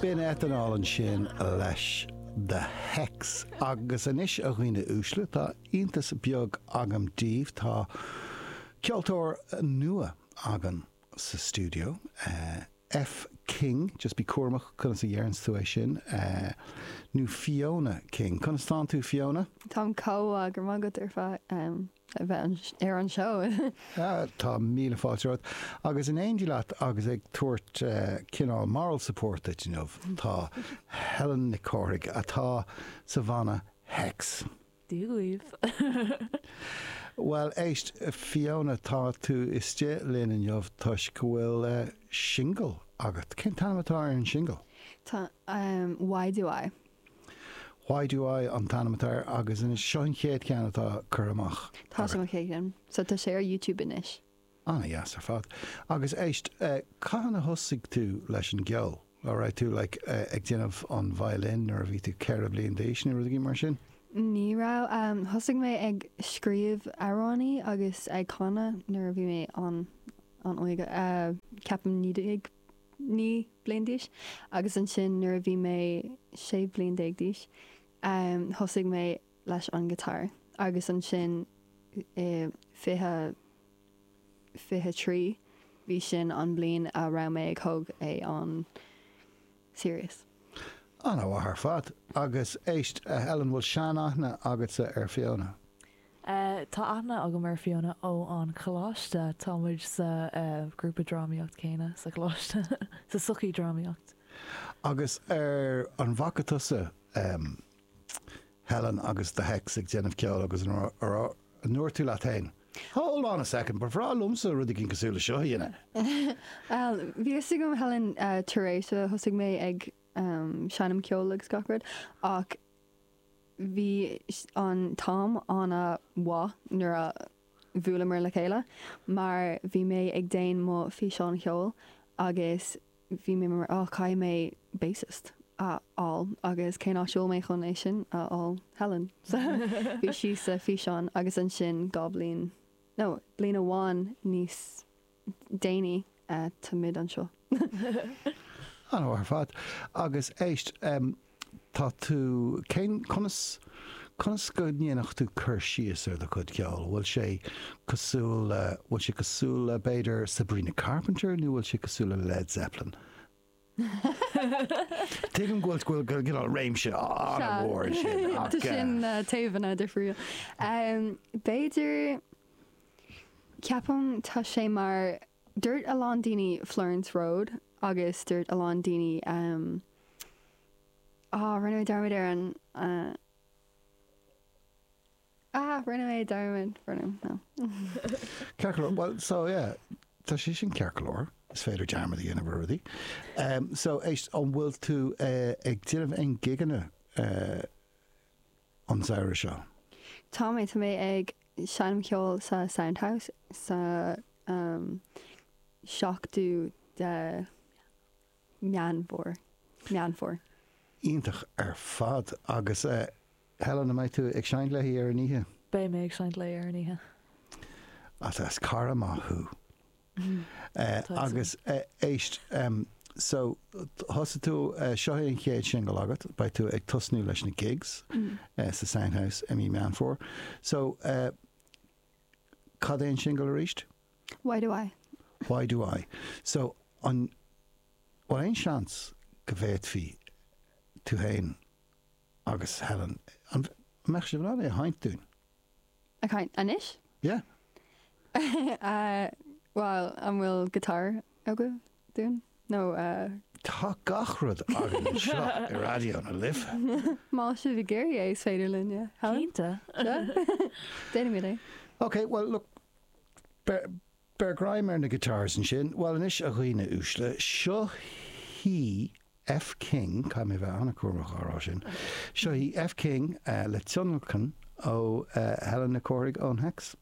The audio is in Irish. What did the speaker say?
B'in etanól ansin leis. The hex! Agus anois, a dhaoine uaisle, tá iontas beag agam daoibh, tá ceoltóir nua againn sa stiúideo. F. King, just bí cúramach conas a dhéarfas tú é sin, nó Fiona King. Conas tánn tú, Fiona? Táim comh maith, go raibh maith agat ar fad. a bheith ar an seó. Tá míle fáilte romhat agus in éindí leat agus ag tabhairt cineál moral support duit inniu tá Helen Nic Cárthaigh atá sa bhanna hex. Dia dhaoibh! Bhuel éist, Fiona, tá tú istigh linn inniu toisc go bhfuil singil agat. Cén t-ainm atá ar an singil? Tá, Why Do I? Why do I an t-ainm atá air agus anois seo an chéad cheann atá curtha amach agat? Tá, sé mo chéad cheann. So tá sé ar YouTube anois. Ana dheas ar fad. Agus éist, eh, cathain a thosaigh tú leis an gceol? An raibh tú like eh, ag déanamh an violin nuair a bhí tú ceithre bliain d'aois nó rud éigin mar sin? Ní raibh, em, thosaigh mé ag scríobh amhránaí agus ag canadh nuair a bhí mé an, an-óg, eh, ceapaim naoi déag naoi mbliain d'aois, agus ansin nuair a bhí mé sé bhliain déag d'aois, thosaigh mé leis an guitar, agus ansin i fiche, fiche trí, bhí sin an bhliain a raibh mé ag thóg é an serious. Ana mhaith ar fad. Agus éist, a Helen, bhfuil sean-aithne agatsa ar Fiona? Tá aithne agam ar Fiona ón gcoláiste, tá muid sa ghrúpa drámaíocht céanna sa choláiste, sa sochaí drámaíocht. Agus an bhfaca tusa Helen agus The Hex ag déanamh ceol agus an ndúirt tú leat féin, Hold on a second, ba bhreá liomsa rud éigin cosúil le seo a dhéanamh? Bhí fhios agam Helen tar éis a thosaigh mé ag seinm ceoil agus gach rud ach, Bhí an t-am ana mhaith nuair a bhuaileamar le chéile mar bhí mé ag déan mo físeán cheoil agus bhí mé mar oh caithfidh mé bassist a fháil agus cén áit a bhfuil mé chun é sin a fháil? Helen. So bhí sí sa físeán agus ansin dhá bhliain nó bliain amháin níos déanaí táimid anseo. Ana mhaith ar fad. Agus éist, tá tú, cén, conas, conas go ndéanfadh tú cur síos ar do chuid ceoil? Bhfuil sé cosúil le, bhfuil sé cosúil le, b'fhéidir, Sabrina Carpenter nó bhfuil sé cosúil le Led Zeppelin? Tuigim go bhfuil go bhfuil réimse an-mhór ansin ach. Tá sin taobhanna difriúla. B'fhéidir, ceapaim, tá sé mar, dúirt a lán daoine Florence Road agus dúirt a lán daoine, rinne mé dearmad ar an. Ah, rinne mé dearmad, rinne, no. Ciorcalóir, bhuel, so, yeah, tá sé sin ciorcalóir, is féidir dearmad a dhéanamh ar rudaí. Em, so, éist, an bhfuil tú eh, ag déanamh aon gigeanna eh, an samhradh seo? Tá mé, tá mé ag seinm ceoil sa Sound House sa em, seachtú de. Meán Fómhair, Meán Fómhair. Iontach ar fad. Agus Helen, an mbeidh tú ag seinnt léi ar an oíche? Beidh mé ag seinnt léi ar an oíche. Is cara maith thú. Agus éist, so thosaigh tú, seo é an chéad singil agat, beidh tú ag tosnú leis na gigs sa Sound House i mí Meán Fómhair. So cad é an singil arís? Why do I? Why do I? So, an bhfuil aon seans go bhféadfaí tú féin agus Helen, an mbeadh sibh in ann é a sheinnt dúinn? Ag seinnt anois? Yeah. Bhuel, an bhfuil guitar agaibh dúinn? Nó. Tá gach rud againn anseo i Raidió na Life. Más sibh ag iarraidh é, is féidir linn é, Helen. Cinnte. Déanaimid é. Ok, bhuel, look, Beir greim ar na guitars ansin. Bhuel anois, a dhaoine uaisle, seo hí F King, caithfidh mé a bheith an-chúramach á rá sin, seo hí F King le tionlacan ó Helen Nic Cárthaigh ón Hex.